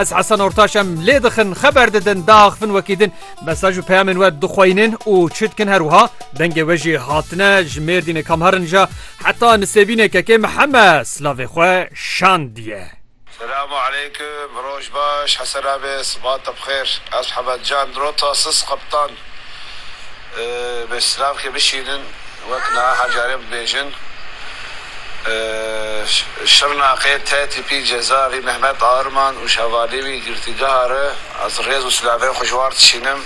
Ez Hesen Ortaş em lê dixin xeber didin diaxivin wekî din mesaj û peyamên we dixweynin û çi dikin her wiha dengê we jî hatine ji mêrdînê kam herin ja heta nisêbînê kekê miheme silavê xwe şandiye. Selamu aleykum, roj baş, hesena be, sibata bixêr, ez Hemed Can Rota Sis Qeptan, Bi silavkê bişînin wek niha carê bibêjin Şirnaqê te tîpî ceza vî Mehmet Arman û şevalê wî girtîgeha re ez rêz û silavên xwe ji war dişînim.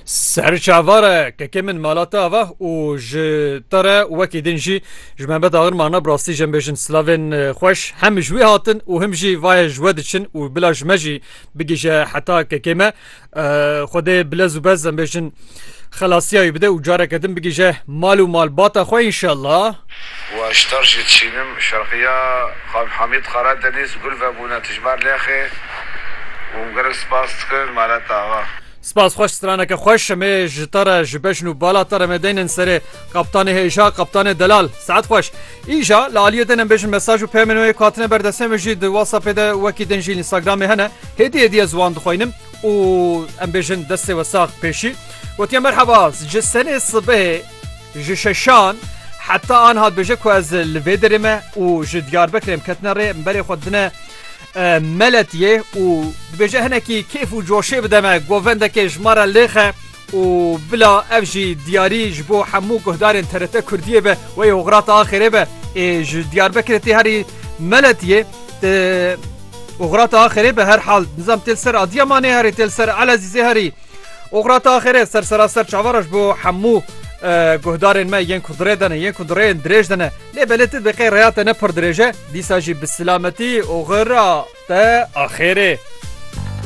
Ser çava re kekê min mala te ava û ji te re wekî din jî ji Mehmet Arman re bi rastî jembêjin silavên xweş hem ji wî hatin û him jî vaye ji we diçin û bila ji me jî bigihije heta kekê me. Xwedê bilez û bez em bêjin xelasiya wî bide û careke din bigihije mal û malbata xwe înşellah. Waştar jî dişînim şerqiya Xan Hamîd Qaradenîz gul vebûne tijmar lexê û em gelek spas dikin Malat Axa. Spas xweş straneke xweş emê ji te re ji bejn û bala te re me deynin serê Kaptanê hêja Kaptanê Delal saet xweş. Îja li aliyê din em bêjin mesaj û peyamên wê ku hatine ber destê min jî di WhatsAppê de wekî din jî Instagramê hene. Hêdî hêdî ez wan dixwînim û em bêjin destê we sax pêşî gotiye merheba ji senê sibehê ji şeşan heta an hat bêje ku ez li vê derê me û ji Diyarbekirê em ketine rê em berê xwe dine Meletiyê û dibêje hinekî kêf û coşê bide me govendekê ji me re lêxe. Û bila ev jî diyarî ji bo hemû guhdarên TRT Kurdiyê be wey Hograta Axêrê be ê ji Diyarbekirê tê herî Meletiyê tê Hograta Axêrê be her hal nizam tê li ser Adiyamanê herî tê li ser Elezîzê herî Hograta Axêrê ser seraser çavara ji bo hemû guhdarên me yên ku dirê de ne yên ku dirêyên dirêj de ne lê belê tu diqê rêya te ne pir dirêj e dîsa jî bi silametî Hogra te Axêrê.